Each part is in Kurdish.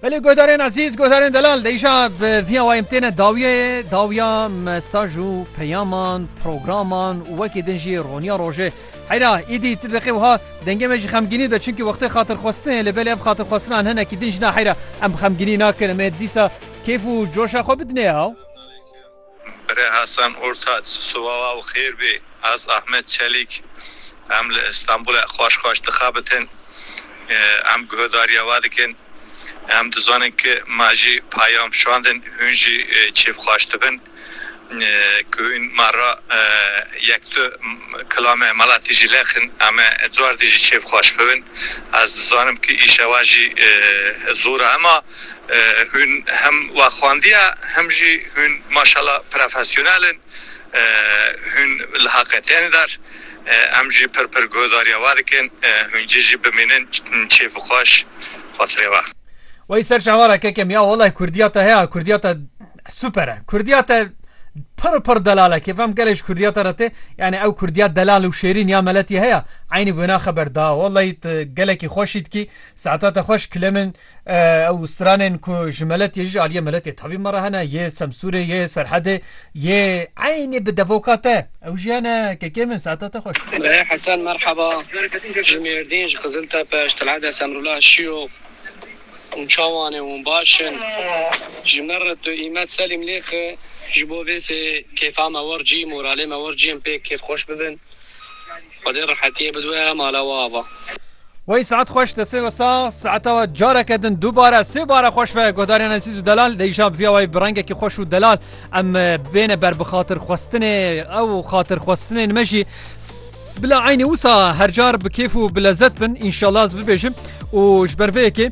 Belê godarên ezîz godarên delal deyja viya wayim têne dawiye dawiya mesaj û peyaman programan û wekî din jî roniya rojê heyra îdî ti biqê wiha dengê me jî xemginî be çunki wextê xatirxwestinê li belê ev xatirxwestinan hinekî din jina heyra em xemginî nakin em ê dîsa kêf û coşa xwe bidinê ew Bire Hasan Ortaç siwawa û xêr bê. Ez Ahmet Çelîk em li Îstanbulê xweş xweş dixebitin. Em guhdarîya we dikin. Em dizanin ki me jî peyam şandin hûn jî kêfxweş dibin. Ku hûn me re yek du kilame meletî jî lexin em ê cardî jî kêfxweş bibin. Ez dizanim ki îşewa jî zor e. Ema. Hûn hem waxwandiya hem jî hûn maşala profesyonel in. Hûn li haqê tên der. Em jî pir pir guhdarîya we dikin. Hûn cî jî bimînin çêf xweş xwatirê we. Wey serç awara kekem ya wallay kurdiya te heya kurdiya te super e kurdiya te pir pir delal e kêfem gelê ji kurdiya te re tê yanî ew kurdiya delal û şêrîn ya meletî heya eynî wêna xeber da wallay tu gelekî xweş î dikî saeta te xweş kilê min Ew stranên ku ji meletê ji aliyê meletê tevî me re hene yê Semsûrê yê Serhedê yê eynî bi devoka te ew jî hene kekê min saeta te xweş. Birê Hesen merheba ji Mêrdîn ji Qiziltepe ji Telheda Semrûla şîyo hûn çawanê hûn baş in ji min re tu îmet selîm lêxi ji bo vê sê kêfa me wir cî moralê me wir cî em pê kêf xweş bibin. Xwedê rehetiyê bidiwe mala we ava. Wey saet xweş destê we sax saeta we careke din dubare sê bare xweş be guhdarên Esîz û Delal lê îşab viya wayî bi rengekî xweş û delal em bêne ber bi xatirxwestinê ew xatirxwestinên me jî bila eynî wisa hercar bi kêf û bi lezet bin înşallah ez bibêjim û ji ber vê yekê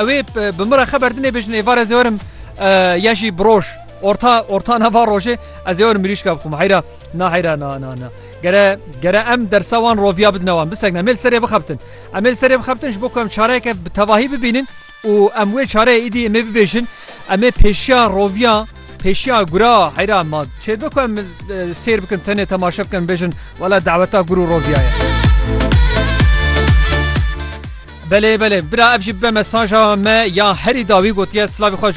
Ew ê bi min re xeber dinê bêjin êvar ez ê werim ya jî bi roj orta orta nava rojê ez ê werim mirîşka bixwim heyra na heyra na na na gere gere em dersa wan roviya bidin wan bisek emêl serê bixebtin emêl serê bixebtin ji bo ku em çareyeke bi tevahî bibînin û em wê çareyê îdî em ê bibêjin em ê pêşiya roviya pêşiya gura heyra ma çê bi ku em sêr bikin tenê temaşe bikin bêjin wela daweta gur û roviyaye. Belê belê bira ev jî bibe mesaja me ya herî dawî gotiye silavê xwe ji